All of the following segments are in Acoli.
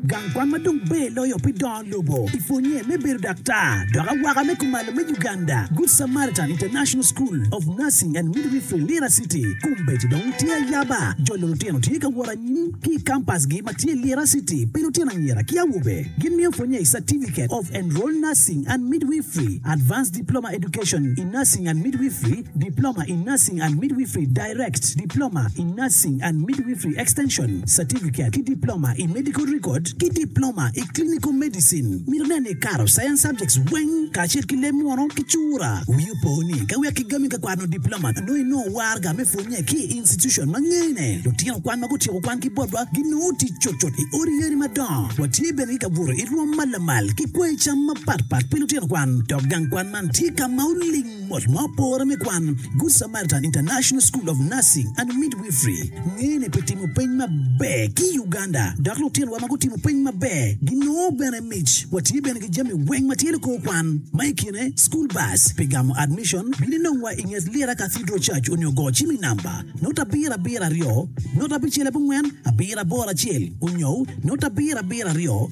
Gang kwan ma dong ber loyo pi dongo lobo i pwonnye me bedo daktar dok awaka me kumalo me Uganda, Good Samaritan International School of Nursing and Midwifery, Lira City, kombeddi dong tye ayaba. Jolo lutino tye ka wot anyim ki i kampasgi ma tye Lira City pi lutino anyira ki awobe. Gimiyo pwonnye i Certificate of Enrolled Nursing and Midwifery, Advanced Diploma Education in Nursing and Midwifery, Diploma in Nursing and Midwifery, Direct, Diploma in Nursing and Midwifery Extension, Certificate ki Diploma i Medical Record, ki Diploma i Clinical Medicine. Mito nen ni ikato Science subjects weng kacel ki leb munu ki cura. Wii opo ni ka wek kigami ka kwano Diploma nongo inongo warga me pwonye ki i institution ma ngene. Lutino kwan ma gutyeko kwan ki botwa ginongo tic cutcut i odi yeni madongo. Watye bene ki kabuto i rwom ma lamal ki kwoyo cam mapatpat pi lutino kwan, dok gang kwan man tye ka ma oling. Mot ma opore me kwan, Good Samaritan International School of Nursing and Midwifery ngene pi timo peny maber ki i Uganda, dok lutinowa ma gutimo peny maber ginongo bene mic. Watye bene ki jami weng ma tye likor kwan, ma i kine school bus. Pi gamo admission, bin inongwa i nget Lira Cathedral Church onyo go cim i namba note abiro abiro aryo note abicel abongwen abiro aboro acel onyo note abiro abiro aryo.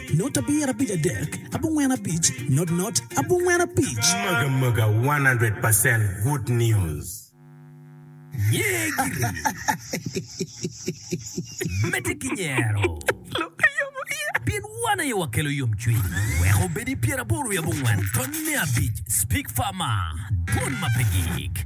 Not abir abic adek abongwen abic not not abongwen abic. Mega mega one hundred percent good news. Nyegiri medde ki nyero, pien wan aye wakelo yomcwiny. Wek obed i pyeraboro wiye abongwen dot nne abic, Speak Farmer, dwon ma pe gik.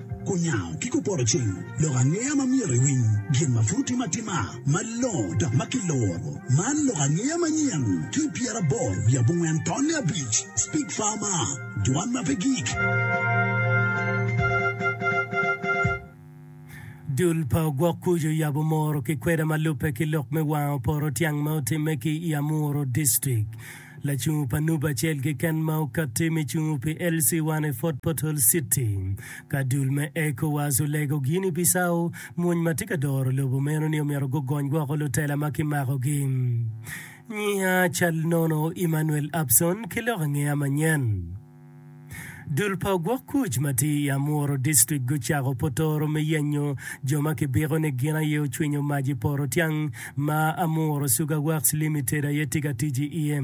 Kunyango ki kupoto cing, lok angeya ma myero iwiny gin ma pud otime atima malongo dok ma kiloro. Man lok angeya manyen ki pyeraboro wiye abongwen tonne abic, Speak Farmer, Dwan ma pe gik. Dul pa ogwok kuc oyabo moro ki kweda ma lubbe ki lok me wango poto tyang ma otimme ki i Amuru District. Lacungo pa nup acel keken ma okatti me cungo pi LC1 i Fort Portal City. Ka dul me Ecowas olego gin i Bissau, mony ma tye ka doro lobo meno ni omyero gugony woko lutela ma kimakogi. Nyiha cal nono Emmanuel Abson ki lok angeya manyen. Dul pa ogwok kuc ma tye i Amuru District gucako potoro me yenyo jo ma kibiko ni gin aye ocwinyo mac i poto tyang ma Amuru Sugar Works Limited aye tye ka tic i iye.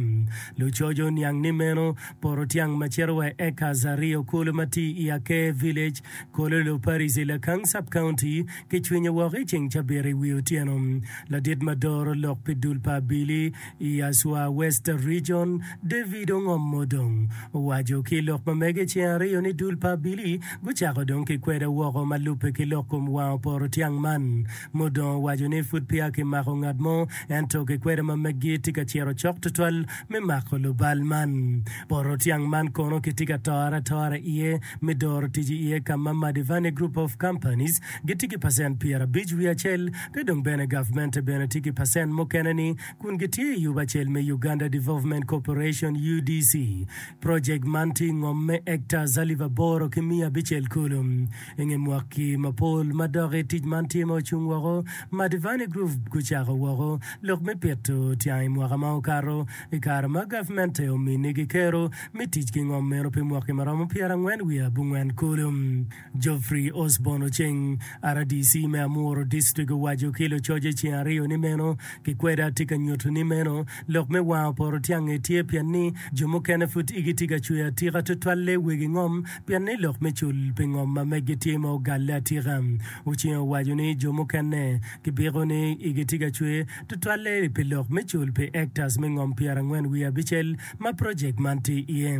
Lucoco oniang ni meno poto tyang ma cito wa i acres aryo kulu ma tye i Aker Village, Kololo Parish i Lakang Sub County kicwinyo woko i ceng cabit i wi otyeno. Ladit ma doro lok pi dul pa Abili I Yaswa West Region, David ongomo dong. Owaco ki lok ma mege ceng aryo ni dul pa Billy gucako dong ki kweda woko ma lubbe ki lok kom wang oporo tyang man. Mudong owaco ni pud peya ki mako ngat mo ento ki kweda ma meggi tye ka ciro cok tutwal me mako lubal man. Poro tyang man kono ki tye ka tore atora iye me doro tic iye ka ma Madivane Group of Companies gitye ki pacent pyera abic wiye acel Ki dong bene gavmente bene tye ki pacent mukene ni kun gitye i yubo acel me Uganda Development Corporation, UDC. Project man tye i ngom me acres alip aboro ki miya abicel kulu. I nge mwaki mapol madoki tic man tye ma ocung woko, Madivani Group gucako woko lok me pito tyang i mwaka ma okato i kare ma gavmente ominigi kero me tic ki ngom meno pi mwaki maromo pyerangwen wiye abungwen kulu. Geoffrey Osborn oceng, RDC me Amuru District owaco ki lucoce ceng aryo ni meno kikwede atye ka nyutu ni meno lok me wango porotyange tye pien ni jo mukene pud igi tye ka cwer atika tutwalle wegi ngom pien ni lok me cul pi ngom ma meggi tye ma ogalle atika. Oceng owaco ni jo mukene kibiko ni igi tye ka cwer tutwalle pi lok me cul pi acres me ngom pyerangwen wiye abicel ma project man tye iye.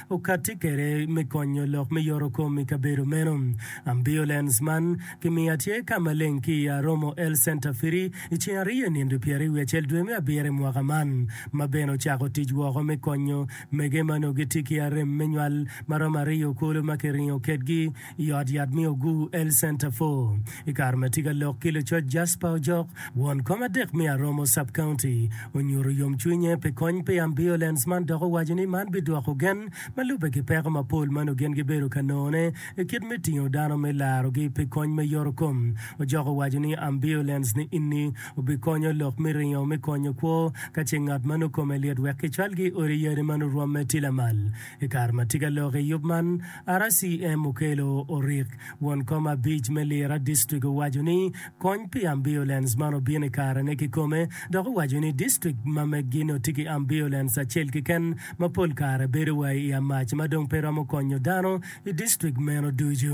okatti kwede me konyo lok me yorokom i kabedo meno. Ambiulens man kimiya tye ka maleng ki i Aromo Health Center Firi i ceng ariyo i nino pyeraryo wiye acel dwe me abiro i mwaka man, ma bene ocako tic woko me konyo mege ma onongo gitye ki arem me nywal maromo aryo kulu ma kiringo kwedgi I ot yat me Oguu Health Centre Four, i kare ma tye ka lok ki lucoc Jasper Ojok, won kom adek me Aromo Sub-County, onyuto yomcwinye pi kony pi ambiulens man dok owaco ni man bidwoko gen ma lubbe ki peko mapol ma nongo gin gibedo ka nongone i kit me tingo dano me larogi pi kony me yorokom. Ojok owaco ni ambiulens ni inni obikonyo lok me ringo me konyo kwo ka ce ngat ma nongo kome lit wek kicwalgi i odi yadi ma nongo rwomme tye lamal. I kare ma tye ka lok i yub man, RCM okelo orik. Won kom abic me Lira district owaco ni kony pi ambiulens man obino i kare ne kikome dok owaco ni district ma megi nongo tye ki ambiulens acel keken ma pol kare bedo wa i amac ma dong pe romo konyo dano i district meno ducu.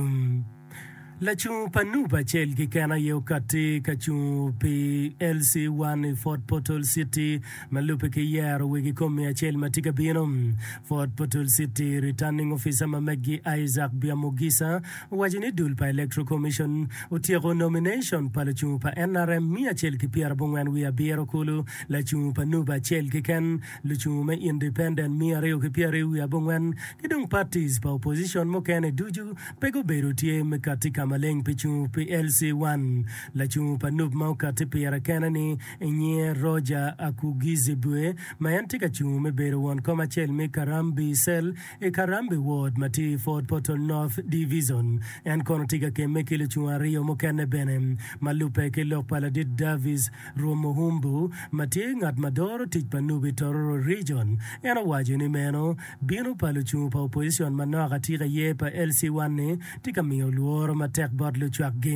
Lacung pa nup acel keken aye okatti ka cungo pi LC One i Fort Portal City ma lubbe ki yero wegi kom miya acel ma tye ka bino. Fort Portal City Returning Officer ma meggi Isaac Biamogisa owaco ni dul pa Electoral Commission otyeko nomination pa lacungo pa nrm miya acel ki pyera bongwen wiye abiro kulu lacungo pa nup acel keken Lucung me Independent miya aryo ki pyer aryo wiye abongwen ki dong parties pa opposition mukene ducu pe gubedo tye me kati ka maleng pi cung pi LC one. Lacung pa Nup ma okati pire kene ni inyinge Roger Akugizibwe ma en tye ka cung me bedo won kom acel me Karambi Cell i Karambi Ward ma tye i Fort Portal North Divison. En kono tye ka kemme ki lucung aryo mukene bene ma lubbe ki lok pa Ladit Davis Rwom Muhumbu, ma tye ngat ma doro tic pa Nubi Tororo Region, en owaco ni meno bino pa lucung pa opojicon manok atika aye pa LC-1-ni tye ka miyo lworo matek bot lucwakgi.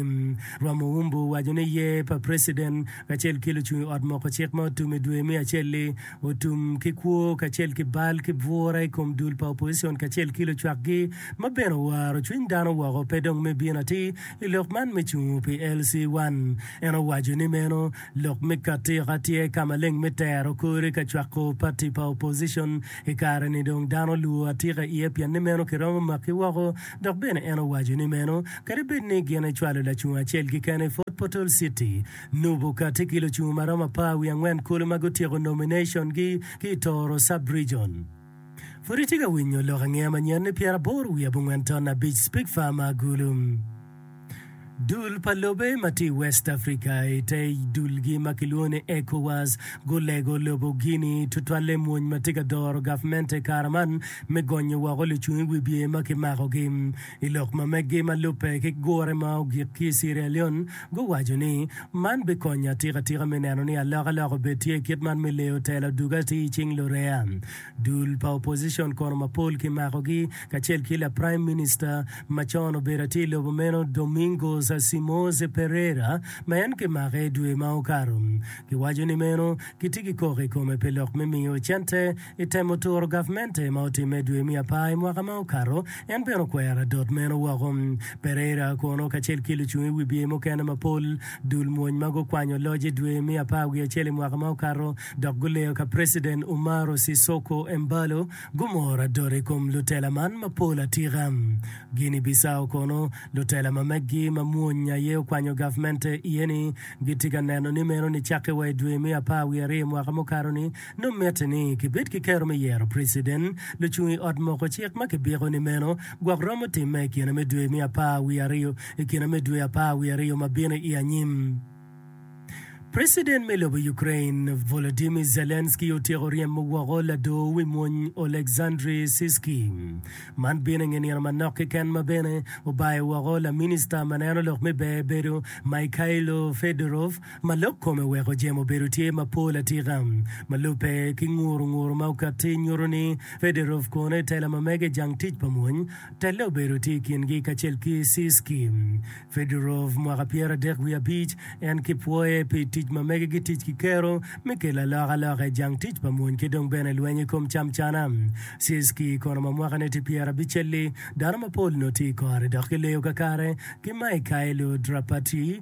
Rwom Muhumbu owaco ni ye pa preciden kacel ki lucung i ot moko cik ma otum i dwe me acel-li otum ki kwo kacel ki bal ki bwura i kom dul pa opojicon kacel ki lucwakgi ma bene owaro cwiny dano woko pe dong me bino atir I lok man me cungo pi LC1, en owaco ni meno lok me katika tye ka maleng me tero kore ka cwako pati pa opposition i kare ni dong dano luwo atika iye pien ni meno kiromo maki woko dok bene en owaco ni meno kadi bed ni gin ecwalo lacung acel keken i Fort Portal City nubo kati ki lucung maromo apar wiye angwen kulu ma gutyeko nomination gi ki i Tooro Sub-Region. Pud itye ka winyo lok angeya ma nyen ni pyeraboro wiye abongwen ton abic Speke Farmer Agulu, dul pa lobe ma tye i West Africa i te dulgi ma kilwongo ni ECOWAS gulego lobo Guinea tutwalle mony ma tye ka doro gavmente i kare man me gonyo woko lucung i wibye ma kimakogi. I lok ma megi ma lubbe ki gure ma ogik ki i Sierra Leone guwaco ni, Man bikonyo atika tika me neno ni alokaloka obed tye kit man me leyo telo duga atir i cing lureya. Dul pa opposition kono mapol kimakogi kacel ki la Prime Minister ma con obedo atir lobo meno Domingos Simões Pereira ma en kimake dwe ma okato. Giwaco ni meno gitye ki koko i kome pi lok me miyo cente I temo turo gavmente ma otimme i dwe me apar i mwaka ma okato, en bene okwero adot meno woko. Pereira kono kacel ki lucung i wibye mukene mapol dul mwony ma gukwanyo loc i dwe me apar wiye acel i mwaka ma okato dok guleyo ka President Umaro Sissoco Embaló gumoro adot i kom lutela man mapol atika. Guinea Bissau kono lutela ma megi ma mwony aye okwanyo gavmente iye ni gitye ka neno ni meno ni cakke wa i dwe me apar wiye aryo i mwaka mukato ni Nongo mitte ni kibed ki kero me yero preciden, lucung i ot moko cik ma kibiko ni meno gwok romo timme i kine me dwe me apar wiye aryo i kine me dwe apar wiye aryo ma bino i anyim. Preciden me lobo Ukrain Volodymyr Zelensky otyeko ryemo woko ladoo wi mony Oleksandry Syrskyi. Man bino i nge nino manok keken ma bene obayo woko laminista maneno lok me ber bedo Mykhailo Fedorov, ma lok kome weko jemo obedo tye mapol atika. Ma lubbe, ki nguru nguru ma okatti nyuto ni Federov kono i tela ma mege jang tic pa mony, telle obedo tye i kingi kacel ki Sisky. Federov mwaka pyera dek wiye abic, en ki pwoye pi tic ma mege gi tic ki kero me kelo aloka loka i jang tic pa mony ki dong bene lweny i kom cam cana. Sisky kono ma mwakane tye pyera abicelli, dano mapol nongo tye i kore dok ki leyo kakare ki Mikhailo Drapatyi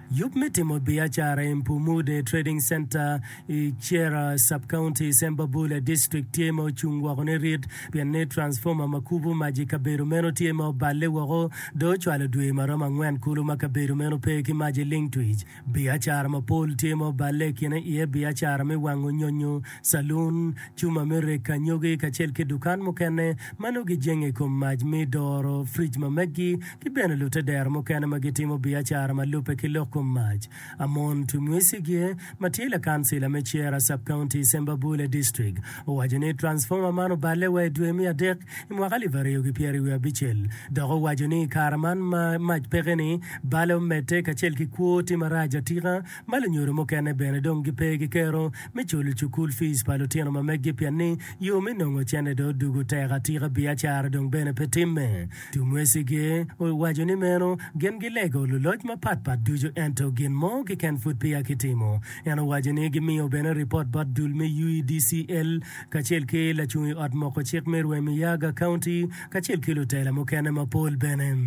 Yub me timo biacara i Mpumude Trading Center i Chera Sub-County, Sembabule District tye ma ocung woko nirit pien ni transformer ma kubo mac i kabedo meno tye ma oballe woko dong ocwalo dwe ma romo angwen kulu ma kabedo meno pe ki mac i ling twic. Biacara mapol tye ma oballe i kine iye biacara me wango nyonyo, Calun, cuma me rek anyogi kacel ki dukan mukene ma nongo gijenge i kom mac me doro, frij ma meggi, ki bene lutedero mukene ma gitimo biacara ma lubbe ki lok kom mac. Amon Tumwisigie, ma tye lakancila me Chera Sub-County i Sembabule District, owaco ni transformer man oballe wa i dwe me adek i mwaka alip aryo ki pyeri wiye abicel, dok owaco ni i kare man ma mac peke-ni, bale omedde kacel ki kwo tye marac atika. ma lunyodo mukene bene dong gipe gikero me culo cukul fiic pa lutino ma megi pien ni yo me nongo cente dong odwogo tek atika biacara dong bene pe timme. Tumwecigi owaco ni meno gin gilego luloc mapat pat ducu ento gin mo keken pud peya kitimo. En owaco ni gimiyo bene ripot bot dul me UEDCL kacel ki lacung i ot moko cik me Rwemiyaga County, kacel ki lutela mukene mapol bene.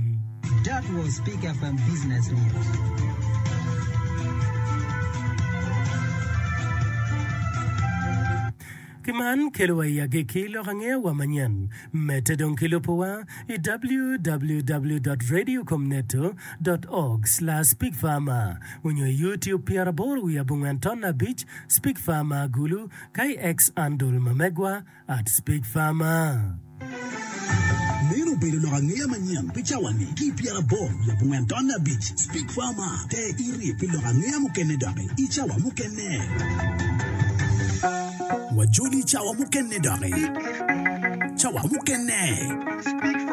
Ki man kelowa i agikki lok angeyowa manyen. Medde dong ki lubo wa i www.radiocomneto.org/speakfarmer onyo i YouTube pyeraboro wiye abongwen ton abic, Speak Farmer, Gulu, KX Andol ma megwa. At Speak Farmer. Meno obedo lok angeya manyen pi cawani ki i pyeraboro labongo en tonne abic. Speak Farmer, ter iri pi lok angeya mukene doki i cawa mukene. Wajoli i cawa mukene doki. Cawa mukene.